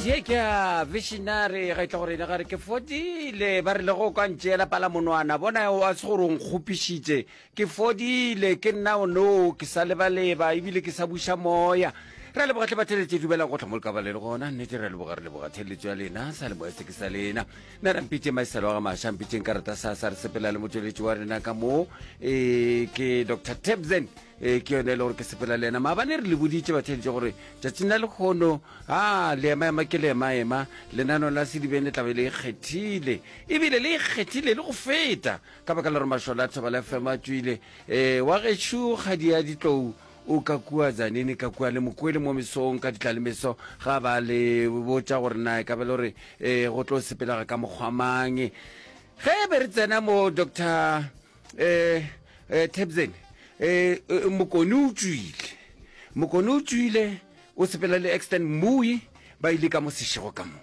ye ke a visionary ga itla gore ene gare ke fodile ba rile go kwa ntšeela pala monwana bona wa se gore o nkgopišitše ke fodile ke nna o no ke sa lebaleba ebile ke sa buša moya re a leboga tle batheletše dumelang go tlhamolka ba le le gona nnete re a leboga re leboga theletso ya lena sa leboga se ke sa lena na ra mpitše maiselo ga maša mpitšeng karata sa sa re sepela le motšweletši wa rena ka moo um ke dr tebsen ee ke yone e le gore ke sepela le yena maabane re le boditše batheeditše gore tšatšing la lekgono a le ema ema ke le ema ema lenano la sedibeng le tlabe le ikgethile e ebile le ikgethile le go feta ka baka le gore mašole a thoba la fema tswile um wa gešo kgadi ya ditlou o ka kua zanini ka kua le mokwele mo mesong ka ditla le meso ga ba le botša gore na e ka be le gore um go tlo sepelega ka mokgwamang ge be re tsena mo doctor eh eh tebzen eh, eh mokone o tswile mokone o tswile o sepela le extend mui ba ile ka mo sešego ka mo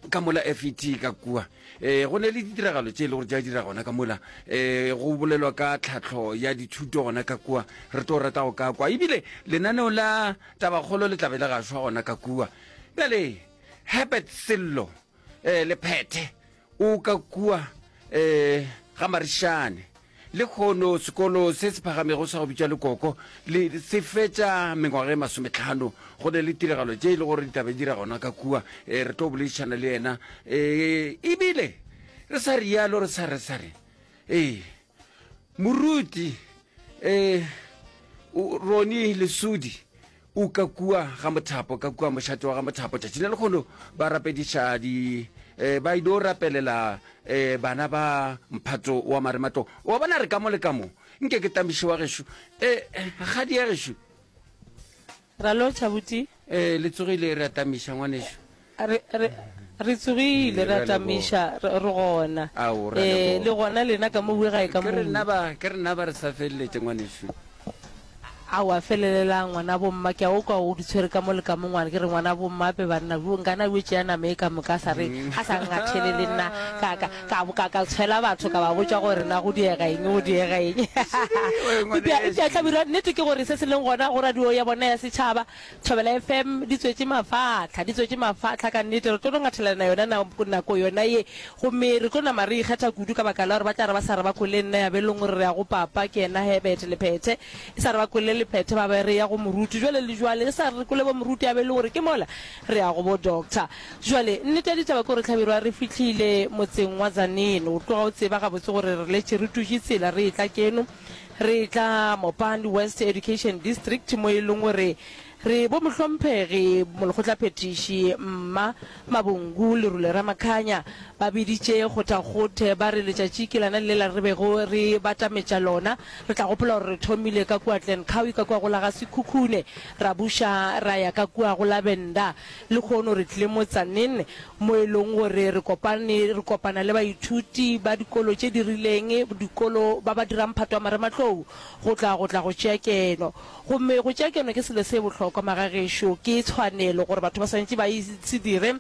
ka mola fet ka kua um go ne le ditiragalo tse e le gore ja dira gona ka mola um go bolelwa ka tlhatlho ya dithuto gona ka kua re tlo rata go ka kwa ebile lenaneo la tabakgolo le tlabe le gashwa gona ka kua bjale herbert sello um lephethe O ka kua um ga Marishane. Lekhono sekolo se se phagamego sa go bitša lekoko le se fetša mengwaga e masometlhano go ne le tiragalo tše e le gore ditabe dira gona ka kua um re tlo boledišana le yena um ebile re sa rialo re sa re sa re ee Moruti um Roni Lesudi o ka kua ga mothapo ka kua mošate wa ga mothapo tšatši le lekgono ba rapediša di um ba ido rapelela um bana ba mphato wa maremato wa bona re ka mo le ka mo nke ke tamiše wa gešo um ga di ya gešo Ra lotšha buti. Ee, le tsogile, re a tamiša, ngwanešu. Re, re, re tsogile, re a tamiša, re, re gona. Ao, re a leboga. Ee, le gona lena ka mo bue gae ka mo. Ke re nna ba, ke re nna ba re sa feleletše, ngwanešu. Ao, a felelelang, ngwanabo mma, ke a o kwa o di tshwere ka mo le ka mo, ngwana, ke re ngwanabo mma, ape banna, yo, nkana yo tšea nama e ka moka, a sa re, a sa ngathelele nna, ka, ka. ka boka ka tshwela batho ka ba botša gore na go diega eng go diega eng epša hlabirwa nnete ke gore se se leng gona go radio ya bona ya setšhaba thobela fm di tswetše mafatlha di tswetše mafatlha ka nnete re tlo no ngathelana yona nako yona ye gomme re tlo nama re ikgetha kudu ka baka la gore ba tla re ba sa re ba kwele nna ya be e leng gore re ya go papa ke yena hebete lephethe e sa re ba kwele lephethe ba ba re ya go moruti jale le jale e sa re kwele bo moruti ya be e le gore ke mola Re ya go bo doctor. Bjale, nnete ya ditaba ke gore Hlabirwa re fihlile motseng wa Tzaneen. O tloga o tseba gabotse gore re letše re tutše tsela re etla keno. Re etla Mopani West Education District mo e leng gore re bo mohlomphegi molekgotlaphethiši Mma Mabungu le Rule Ramakhanya ba biditše kgothakgothe ba re letšatši ke lana lela re bego re batametša lona. Re tla gopola gore re thomile ka kua Glencoe ka kua go la ga Sekhukhune. Ra buša ra ya ka kua go Lavender, lehono re tlile motsaneng mo e lego gore re kopane re kopana le baithuti ba dikolo tše di rileng, dikolo ba ba dirang mphato wa marematlou go tla go tla go tšea keno. Gomme go tšea keno ke selo se bohlokwa, magagešo, ke tshwanelo gore batho ba swanetše ba e se dire.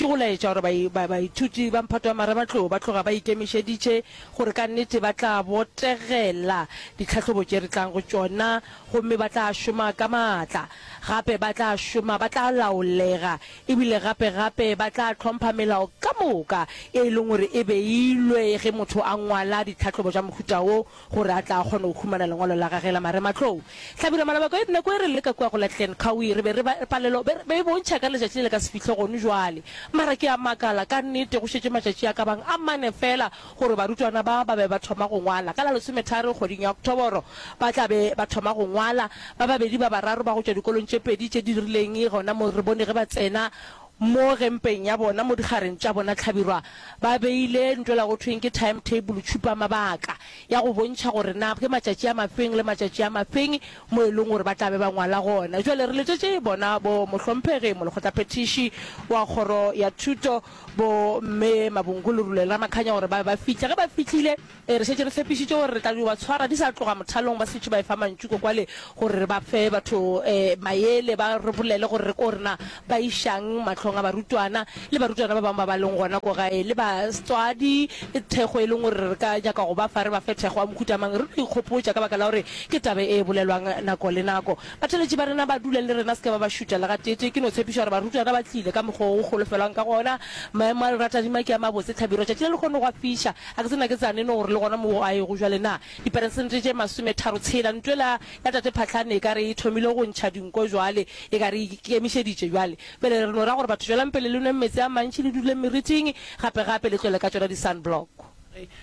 Ke go laetša gore bai, ba, baithuti ba mphato wa mara ba tlo ba tloga ba ikemišeditše gore ka nnete ba tla botegela ditlhahlobo tše re tlang go tšona gomme ba tla šoma ka maatla. Gape ba tla šoma, ba tla laolega, ebile gape, gape ba tla hlompha melao ka moka e e leng gore e beilwe ge motho a ngwala ditlhahlobo tša mohuta wo, gore a tla kgone go humana lengwalo la gage la marematlou. Hlabirwa Malaba Koit, Nako e re le ka kua go la Glen Cowie re be re ba, palelo be, be e bontšha ka letšatši le le ka se fihle gonu jwale. Mara ke a makala, ka nnete go šetše matšatši a ka bang a mane feela gore barutwana ba ba be ba thoma go ngwala. Ka la lesometharo kgweding ya Oktoboro ba tla be ba thoma go ngwala. Ba babedi ba bararo ba go tšwa dikolong tše pedi tše di rileng gona mo re bone ge ba tsena Mo gempeng ya bona, mo digareng tša bona tlhabirwa, ba beile ntw ela go thweng ke time table, tšhupamabaka, ya go bontšha gore na ke matšatši a mafeng le matšatši a mafeng mo e leng gore ba tla be ba ngwala gona. Bjale re letšetše bona bo Mohlomphegi molekgotlaphethiši wa Kgoro ya Thuto, bo Mme Mabungulu Rulelamakhanya gore ba be ba fihle. Ge ba fihlile, Ee, re šetše re tshepišitše gore re tla yo ba tshwara di sa tloga mothalong, ba šetše ba efa mantšu ko kwale gore re ba fe batho mayele ba re bolele gore re ko rena ba išang mahlong a barutwana le barutwana ba bangwe ba ba leng gona ko gae le batswadi thekgo e leng gore re ka nyaka go ba fa, re ba fe thekgo ya mohuta mang. Re no ikgopotša ka baka la gore ke taba e bolelwang nako le nako. Batheeletši ba rena ba dule le rena, se ke ba ba šuta le gatee-tee. Ke no tshepiša gore barutwana ba tlile ka mokgwa wo go golofelwang ka gona. Maemo a lera tadima ke a mabotse, Tlhabirwa, tšatši le lekgono gwa fiša. A ke tsena ke tsane no gore le gona mo a ego jwale na? Diperesente tše masometharo tshela. Ntwela ya Tate Phahlane e ka re e thomile go ntšha dinko jwale, e ka re e ikemišeditše bjale. Bjale re no ra gore batho tšwelang pele le nweng meetse a mantši le duleng meriting gape gape le tlole ka tšona di-sunblock.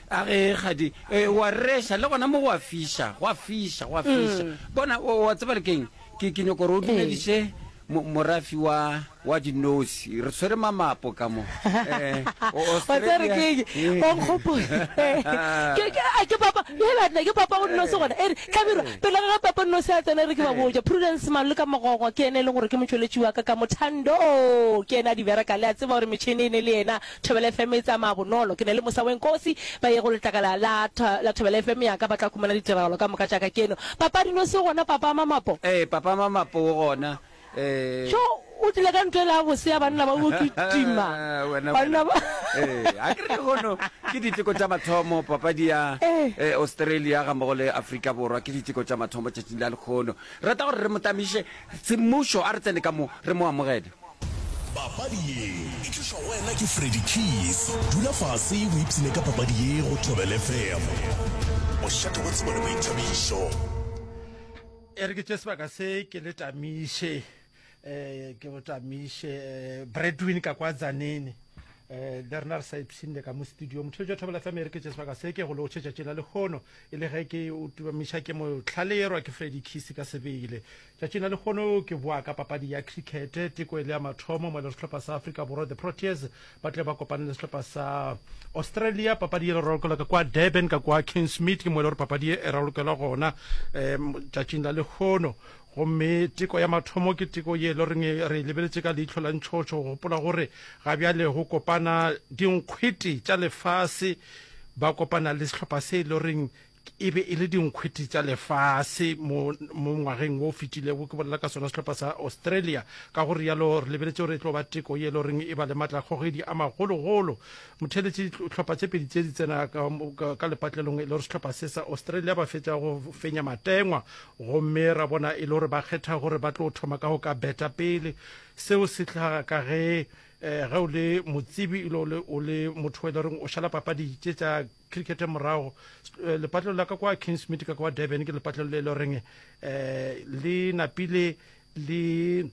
A ge kgadi e, o a reša le gona mo go a fiša, go a fiša, go a fiša. Bona, o, o a tseba le ke'ng? Ke, ke nyoko gore o dumediše mo, morafi wa, wa dinosi. Re tshwere mamapo ka mo. Eh, o- wa tsere Australia. ke eng Eh. wa nkgopola Ke- ke- a ke papa hela nna ke papa o nnosi gona ere tlabirwa pele ga ge papa nnosi a tsena re ke ba boja prudence malo le ka mogogo ke ene e leng gore ke motšweletši wa ka ka mothando o ke ene a di bereka le a tseba gore metšhene e ne le yena Thobela FM e tsamaya bonolo. Ke na le mosa we nkosi ba ye go letlakala la, la Thobela FM ya ka ba tla khumana ditiragalo ka moka tša ka. Keno papa dino se gona papa Mamapo? Ee, papa Mamapo o gona. Ee. Tjo, o tlile ka ntwa e la bose ya banna ba go kitima. Wena, Banna wena. ba. Ee, a ke re gono ke diteko tša mathomo papadi ya Ee. eh, Australia ga mmogo le Afrika Borwa ke diteko tša mathomo tšatšing la lekgono. Rata gore re mo tamiše Semmušo, a re tsene ka mo, re mo amogele. Papadi ye e tlišwa go wena ke Freddy Keys. Dula fase o ipshine ka papadi ye go Thobela FM. Bošate bjo tsebo le boithabišo. E re ke tše sebaka se ke le tamiše um ke go tamiše um bradwin ka kwa zanene um le rena re sa ipshinne ka mo studio motho jo thobela fm e re ke tše sebaka se ke go lotšhe tšatši la lehono E le ge ke o tubamiša ke mo hlaleyerwa ke Freddie Kisi ka sebele. Tšatšing la lekgono ke boa ka papadi ya cricket. Teko e le ya mathomo mo e le sehlopha sa Afrika Borwa The Proteas ba tle ba kopane le sehlopha sa Australia. Papadi ye le ralokelwa ka kwa Durban ka kwa Kingsmead ke mo e le gore papadi ye e ralokelwa gona um tšatšing la lekgono gomme teko ya mathomo ke teko ye e le goreng re e lebeletše ka leihlo la ntšhotšho go gopola gore ga bjale go kopana dinkgwete tša lefase Ba kopana le sehlopha se e le goreng e be e le dinkgwethi tsa lefase mo mo ngwageng wo o fetilego ke bolela ka sona sehlopha sa australia ka go rialo re lebeletse gore e tlo ba teko ye e le goreng e ba le maatlakgogedi a magologolo motheletše tlhopha tse pedi tse di tsena ka, ka, ka lepatlelong e le gore sehlopha se sa australia ba fetša go fenya matengwa gomme ra bona e le gore ba kgetha gore ba tlo thoma ka go ka beta pele seo se tlhaga ka ge Ge o le motsebi ile o le o le motho e le reng o šala papadi tše tša cricket morago, lepatlelo la ka kwa Kingsmead ka kwa Durban ke lepatlelo le le reng um le napile le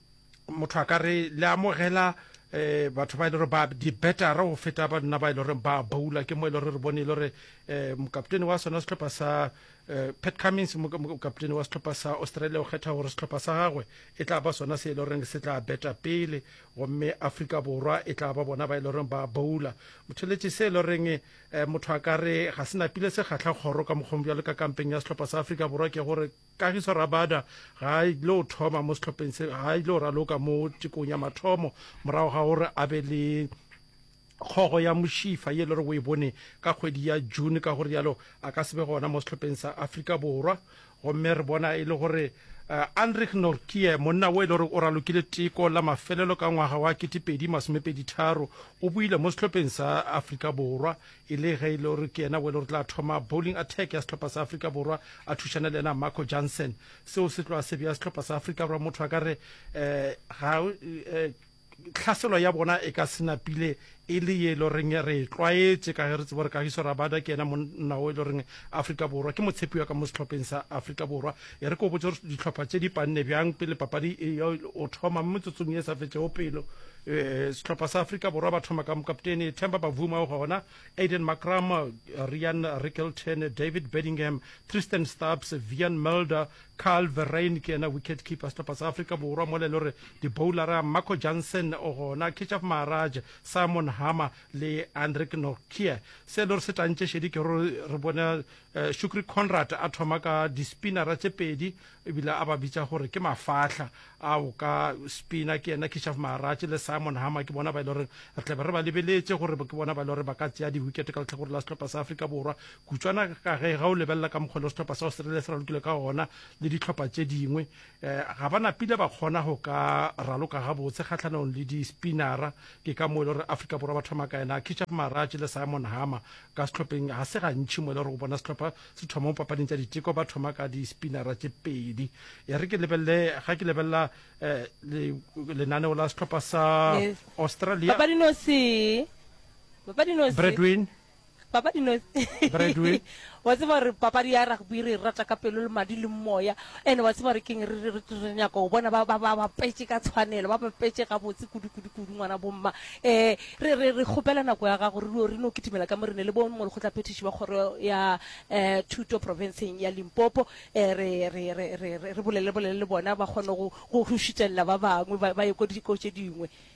motho a ka re le amogela um batho ba e le gore ba di-bettera go feta ba nna ba e le goreng ba boula ke mo e le gore re bone e le gore um mokaptene wa sona sehlopha sa um pat cummings mokaptene wa sehlopha sa australia o kgetha gore sehlopha sa gagwe e tla ba sona se e le goreng se tla beta pele gomme Afrika Borwa e tla ba bona ba e le goreng ba boula motheletše se e le goreng um eh, motho a ka re ga se napile se kgatlha kgoro ka mokgong bjalo ka kampeng ya sehlopha sa Afrika Borwa ke gore Kagiso Rabada ga a ile o thoma mo sehlopheng se ga a ile o raloka mo tekong ya mathomo morago ga gore a be le kgogo ya mošifa ye e le gore o e bone ka kgwedi ya june ka go rialo a ka se be gona mo sehlopeng sa afrika borwa gomme re bona e le gore uh, andrich norkie monna wo e le gore o ralokile teko la mafelelo ka ngwaga wa ketepedi masomepeditharo o buile mo sehlopeng sa afrika borwa e le ge e le gore ke yena wo e le gore tla thoma bowling attack ya sehlopha sa afrika borwa a thušana le yena marco johnson seo se tloa se bja sehlopha sa afrika borwa motho a ka re um ga eh, Tlhaselo ya bona e ka se napile e le ye e le goreng re e tlwaetše ka ge re tseba gore Kagiso Rabada ke yena monna wo e le goreng Afrika Borwa ke motshepiwa ka mo sehlopheng sa Afrika Borwa. E re ke go botše gore dihlopha tše di panne bjang pele papadi e ya go thoma mo metsotsong ye e sa fetšego pelo. Sehlopha sa Afrika Borwa ba thoma ka mokaptene Themba Bavuma o gona, Aiden Markram, Ryan Rickelton, David Bedingham, Tristan Stubbs, Wiaan Mulder, Karl Verreynne ke yena wicket keeper sehlopha sa Afrika Borwa mola e le gore diboulara Marco Jansen o gona, Keshav Maharaj, Simon Harmer le Anrich Nortje. Se e le gore se tantše šedi ke gore re bone eh, Shukri Conrad a thoma ka dispinara tše pedi ebile a ba bitša gore ke mafahla a o ka spina ke yena Keshav Maharaj le Simon Harmer ke bona ba e le gore re tlabe re ba lebeletše gore ke bona ba e le gore ba ka tšea diwikete ka letlhakore la sehlopha sa Afrika Borwa Kutšwana ka ge ga o lebelela ka mokgwa le sehlopha sa Australia se ralokile ka gona le dihlopha tše dingwe, eh, ga ba napile ba kgona go ka raloka gabotse kgahlanong le di-spinnera. Ke ka mo e le gore Afrika Borwa ba thoma ka ena Kicaf Maratje le Simon Harmer ka sehlopheng. Ga se gantšhi mo e le gore o bona sehlopha se thoma mo papading tša diteko ba thoma ka di-spinnera tše pedi. E re ke lebelele ga ke lebelela eh, le, lenaneo la sehlopha sa Yes. Australia Papadinosi. Papadinosi. Bradwin papadi no Bradway. wa tseba gore papadi ya rugby re e rata ka pelo le madi le moya and wa tseba gore keng re- re re- re nyaka go bona ba ba- ba bapetse ka tshwanelo ba bapetse gabotse kudu-kudu-kudu ngwana bomma um re re- re kgopela nako ya gago re no- re no kitimela ka mo re ne le bo molekgotlaphethiši ba kgoro ya um thuto profenseng ya limpopo um re re- re- re- re- re bolele bolele le bona ba kgone go go- go šitelela ba bangwe ba ba ye ko dikao tše dingwe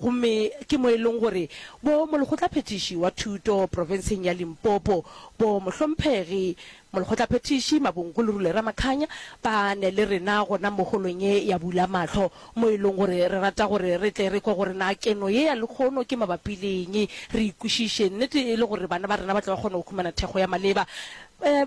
gomme ke mo e leng gore bo molekgotlaphethiši wa thuto profenseng ya Limpopo, bo mohlomphegi molekgotlaphethiši Mabongkulu Rule Ramakhanya ba ne le rena gona mo holong ye ya Bula Mahlo, mo e leng gore re rata gore re tle re kwe gore na keno ye ya lekgono ke mabapi le eng, re ikwešiše nnete e le gore bana ba rena ba tle ba kgone go humana thekgo ya maleba.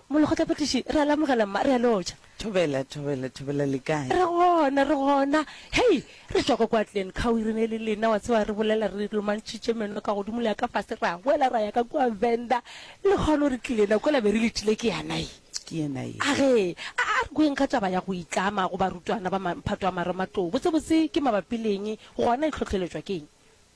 Molekgotlaphethiši, re a le amogela mma, re a le otša. Thobela, Thobela, Thobela, le kae? Re gona, re gona. Hei, re tšwa kwa kwa Glen Cowie, re ne le lena, wa tseba, re bolela, re lomantšhitše meno ka godimo le ya ka fase, ra hwela ra ya ka kwa Venda. Le kgone gore ke lena, kwela be re letile, ke yana ye. Ke yena ye. Age, a, a re kweng ga taba ya go itlama go barutwana ba ma, mphato wa Maroma tlou. Botsebotse ke mabapi le eng, gona e hlohleletšwa ke eng?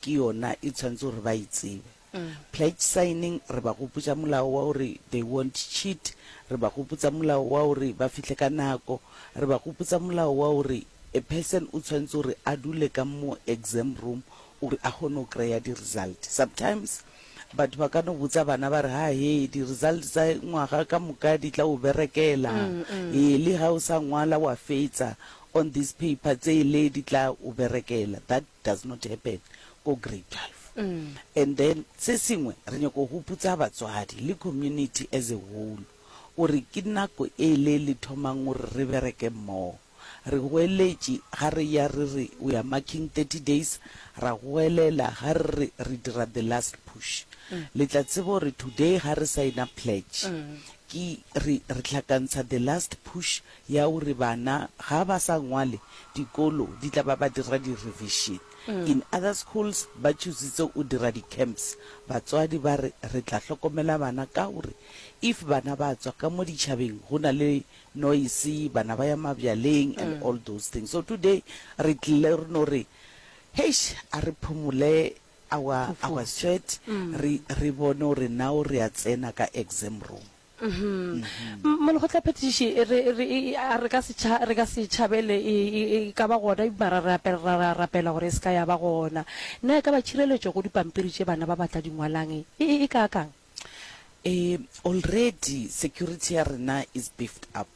ke yona e tshwanetse gore ba e tsebe. Pledge signing re ba gopotsa molao wa gore they won't cheat, re ba gopotsa molao wa gore ba fihle ka nako, re ba gopotsa molao wa gore a person o tshwanetse gore a dule ka mo exam room gore a kgone go kry-a di result. Sometimes batho ba ka no botsa bana ba re, ha he, di result tsa ngwaga ka moka di tla o berekela, he, le ha o sa ngwala wa fetsa on this paper, tsele di tla o berekela. That does not happen ko grade 12 and then se sengwe re nyaka go huputsa batswadi le community as a whole gore ke nako e le le thomang gore re bereke mmogo re goeletše ga re ya re re we are marking 30 days ra goelela ga re re re dira the last push le tla tseba gore today ga re signa pledge ke re re hlakantsha the last push ya gore bana ga ba sa ngwale dikolo di tla ba ba dira di revision in other schools ba choositse o dira di camps batswadi ba re re tla hlokomela bana ka gore if bana ba tswa ka mo ditšhabeng go na le noise bana ba ya mabjaleng and all those things so today re tlile re no re heish a re phumole our our sweat re re bone gore now re a tsena ka exam room Uhm. Molekgotlaphethiši re re e- e- a re ka se tša- re ka se tšhabele e e- e ka ba gona mara re ape- ra ra rapela gore e se ka ya ba gona. Na e ka ba tšhireletšo go dipampiri tše bana ba ba tla di ngwalang e e e kaakang? Eh, already security ya rena is beefed up.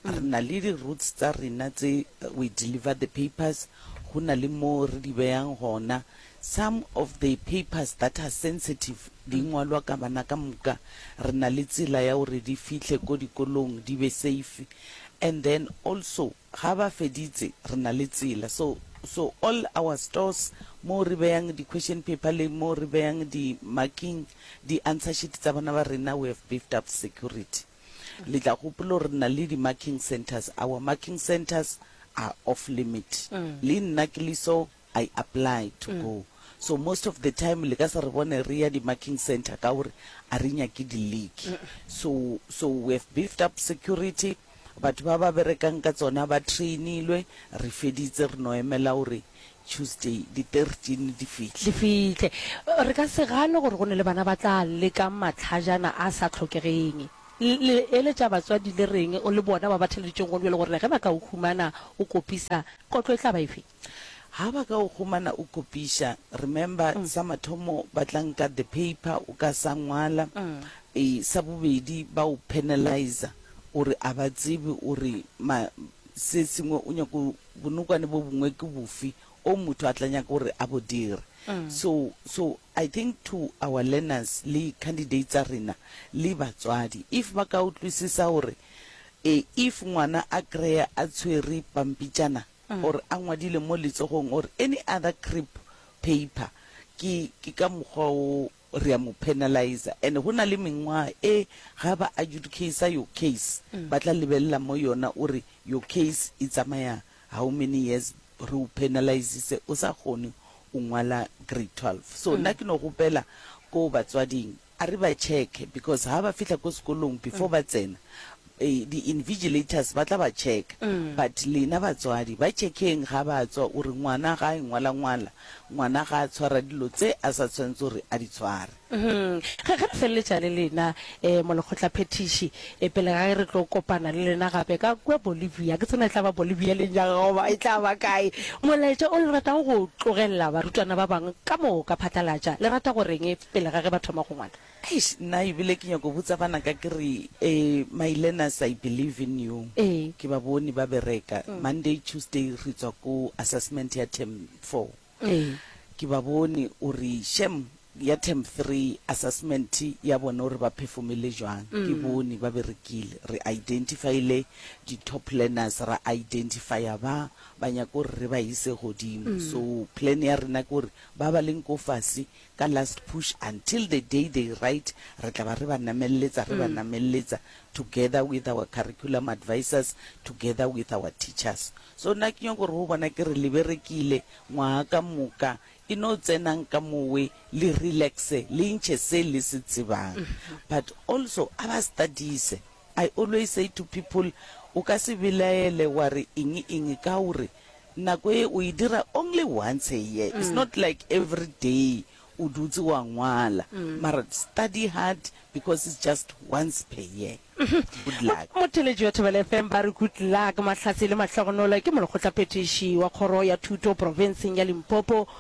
Re na le di routes tsa rena tse we deliver the papers, go na le moo re di beyang gona. Some of the papers that are sensitive di ngwalwa ka bana ka moka, re na le tsela ya gore di fihle ko dikolong di be safe. And then also ga ba feditse re na le tsela so so all our stores moo re beyang di question paper le moo re beyang di marking di answer sheet tsa bana ba rena we have beefed up security. Le tla gopola gore re na le di-marking centres. Our marking centres are off limit. Le nna ke le so, I apply to go. So most of the time le ka se re bone re ya di-marking centre ka gore a re nyake di-league. So, so we have beefed up security, batho ba ba berekang ka tsona ba trainilwe, re feditse re no emela gore Tuesday di 13 di fihle. Di fihle. Re ka se gane gore go na le bana ba tla leka matlhajana a sa tlhokegeng. Le eletša batswadi le reng le bona ba ba theleditšego gona bjale gore ge ba ka o humana o kopisa, kotlo e tla ba efe? Ha ba ka o humana o kopiša, remember, sa mathomo ba tla nka the paper o ka sa ngwala, sa bobedi ba o penaliza gore a ba tsebe gore ma, se sengwe o nyako Bonokwane bo bongwe ke bofe o motho a tla nyaka gore a bo dire? So, so I think to our learners le candidates tsa rena le batswadi, if ba ka utlwisisa gore e, if ngwana a kry-a a tshwere pampitšana or a ngwadile mo letsogong or any other crip paper, ke, ke ka mokgwa o re a mo penalizer and go na le mengwaga e ga ba adjudicater your case ba tla lebelela mo yona o re your case e tsamaya how many years re o penalizitse o sa kgone o ngwala grade 12 so nna ke no gopela ko batswading a re ba check because ha ba fihla ko sekolong before ba tsena Ee, di invigilators ba tla ba checka. But lena batswadi, ba checkeng ga ba tswa gore ngwana ga a engwala ngwala, ngwana ga a tshwara dilo tse a sa tshwanetse gore a di tshware. Ge re feleletša le lena, um molekgotlaphethiši, um pele ga ge re tlo kopana le lena gape ka kua Bolivia, ke tsena e tla ba Bolivia le nyaka goba e tla ba kae, molaetša o le ratago go o tlogelela barutwana ba bangwe ka moka phatlalatša, le rata go reng pele ga ge ba thoma go ngwala? Eish nna ebile ke nyako botsa bana ka ke re eh my learners I believe in you Ee. ke ba bone ba bereka Monday Tuesday re tswa ko assessment ya term four Ee. ke ba bone o re shem ya term three assessment ya bone o re ba perfomile jwang ke bone ba berekile re identifile di top learners ra identifya ba ba nyako re re ba ise godimo so plan ya rena ke gore ba ba leng ko fase ka last push until the day they write re tla ba re ba namelletsa re ba namelletsa together with our curriculum advisors together with our teachers so nna ke nyoko re ho bona ke re le berekile ngwaga ka moka e no tsenang ka mowe le relaxe le ntšhe se le se tsebang but also a ba studise I always say to people, o ka se belaele wa re eng eng ka o re nako ye o e dira only once a year, it's not like everyday o dutse wa ngwala, mara study hard because it's just once per year. Good luck. Motheletši wa Thobela FM ba re good luck. Mahlatse le mahlogonolo ke molekgotlaphethiši wa kgoro ya thuto profenseng ya Limpopo.